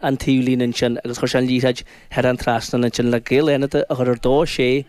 an taobh líne ansin agus chuir sé an liathróid thar an trasnán ansin le Gaeil Fhánada a chur ar dó sé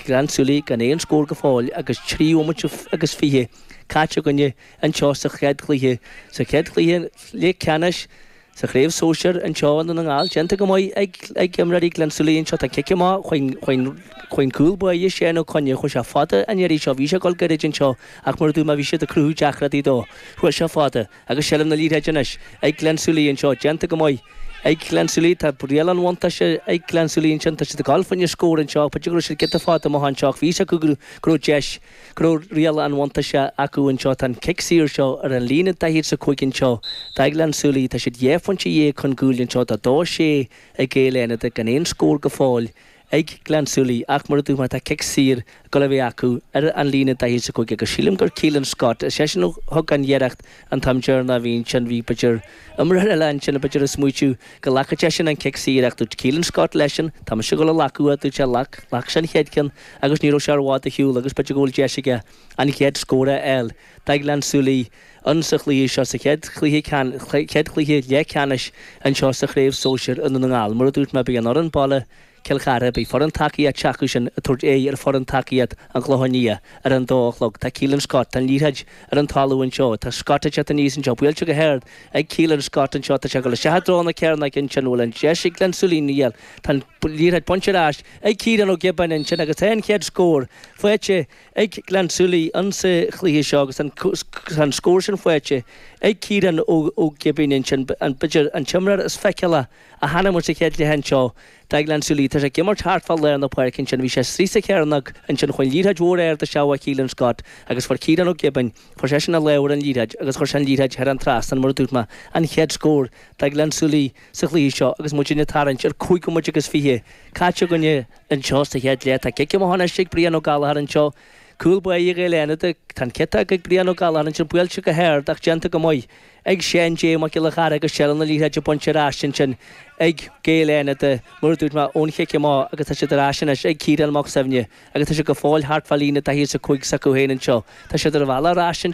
Gleann tSúilí gan aon scór go fóill agus trí bhomaite agus fiche caite againne anseo sa chéad chluiche sa chéad chluiche leathcheannais sa Chraobh Sóisir anseo i nDún na nGall déanta go maith ag ag imreoirí Gleann tSúilí anseo tá cic amach ag an chúl báire Seán Ó Coinn chuaigh sé fada an iarraidh seo bhí sé ag dul gairid anseo ach mar a dúirt mé bhí siad ag cruthú deacrachtaí dó chuaigh sé fada Agus seilbh na liathróide anois ag Gleann tSúilí anseo déanta go maith ag Gleann tSúilí, tá riail an bhuntáiste ag Gleann tSúilí ansin, tá siad ag goil fá choinne scór anseo, b'fhéidir go raibh siad giota fada amuigh anseo ach bhí fhios acu go raibh deis, go raibh riail an bhuntáiste acu anseo. Tá an cic saor seo ar an líne daichead is a cúig anseo do Ghleann tSúilí, tá siad dhá phointe dhéag chun cúil anseo, tá dó sé ag Gaeil Fhánada gan aon scór go fóill ag Gleann tSúilí ach mar a dúirt mé tá cic saor ag dul a bheith acu ar an líne daichead is a cúig agus sílim gur Keelan Scott, is eisean a thug an iarracht an t-am deireanach ansin, bhí b'fhéidir imreoir eile ansin b'fhéidir ag smaoitiú go nglacfadh seisean an cic saor ach dúirt Keelan Scott leisean tá mise ag dul á ghlacadh a dúirt sé ghlac, ghlac sé an chéad ceann agus ní raibh sé i bhfad ar shiúl agus b'fhéidir go bhfuil deis aige an chéad scór a fháil, do Ghleann tSúilí. insa chluiche seo, sa chéad chluiche chéad chluiche leathcheannais anseo sa chraobh sóisir i nDún na nGall. Mar a dúirt mé, beidh an fhoireann baile, Cill Chartha, beidh foireann tacaíochta s'acusan ag tabhairt aghaidh ar fhoireann tacaíochta an Chlocháin Liath ar an dó a chlog. Tá Keelan Scott, tá an liathróid ar an talamh anseo, tá Scott ag teacht aníos anseo, buailte go hard ag Keelan Scott anseo, tá sé ag dul isteach i dtreo na cearnóige ansin, bhfuil an deis ag Gleann tSúilí? Níl, tá an liathróid bainte ar ais ag Ciarán Ó Giobáin ansin agus tá an chéad scór faighte ag Gleann tSúilí insa chluiche seo agus an tá an scór sin faighte ag Ciarán Ó Giobáin ansin. B'fhéidir an t-imreoir is feiceálaí a chonaic muid sa chéad chluiche anseo do Ghleann tSúilí. Tá sé ag imirt thart fá lár na páirce ansin. Bhí sé istigh sa chearnóg ansin, chuaigh an liathróid mhór ard isteach ó Keelan Scott agus fuair Ciarán Ó Giobáin, fuair seisean a lámh ar an liathróid agus chuir sé an liathróid thar an trasnán mar a dúirt mé. An chéad scór do Ghleann tSúilí sa chluiche seo agus muid ag tarraingt ar 5 bhomaite agus 20 caite againn i Anseo sa chéad leath tá cic amach anois ag Brian Ó Gallchóir anseo. Cúl báire Gaeil Fhánada. Tá an cic tógtha ag Brian Ó Gallchóir anseo buailte go hard ach déanta go maith ag Seán J. Mac Giolla Chearra agus seilbh na liathróide bainte ar ais ansin ag Gaeil Fhánada mar a dúirt mé ón chic amach agus tá siad ar ais anois ag Ciarán Mac Suibhne agus tá sé go fóill thart fá líne daichead is 5 s'acu féin anseo. Tá siad ar an bhealach ar ais anseo.